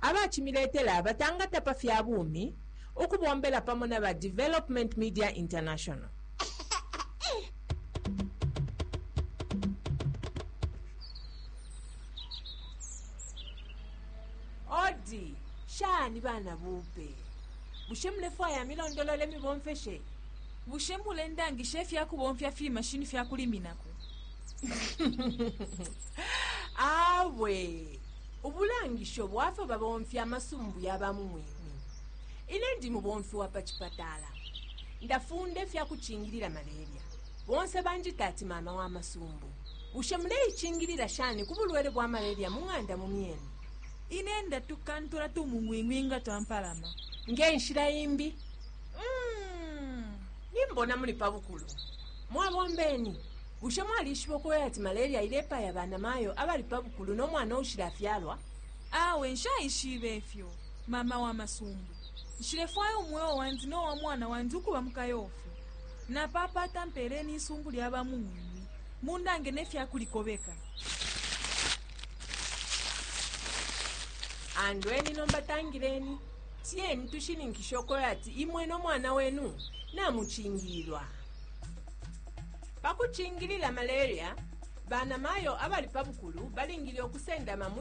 abacimiletela batangata pa fya bumi, ukubombela pamo na ba Development Media International. Odi, shani bana bupe. Bushe mulefwaya milondolole mibomfeshe? bushe mulendangisha ifya kubomfya fimashini fya kuliminako awe Ubulangisho bwa fyo babomfya amasumbu ya ba mu mwinmi. Ine ndi mubomfi wa pa cipatala. Ndafunda ifya kucingilila malaria. Bonse banjita ati mama wa masumbu. Bushe muleicingilila shani ku bulwele bwa malaria mu ng'anda mu myenu? Ine ndatukantula tumung'wing'wi nga twampalama. Nge nshila imbi? Uhm, nimbona muli pa bukulu. Mwabombeni. Bushe mwalishiba ukwebati ati malaria ilepaya banamayo abali pa bukulu no mwana uushilafyalwa? Awe, nshaishibe ifyo, mama wa masumbu. Nshilefwaya umweo wandi no wa mwana wandi ukuba mu kayofi. Napapata mpeeleni isumbu lya bamung'wing'wi, mundange ne fya kulikobeka. Andweni nomba, tangileni, tiyeni tushininkishe ukwebati imwe no mwana wenu namucingililwa. Pa kucingilila malaria, banamayo abali pa bukulu balingile ukusendama mwi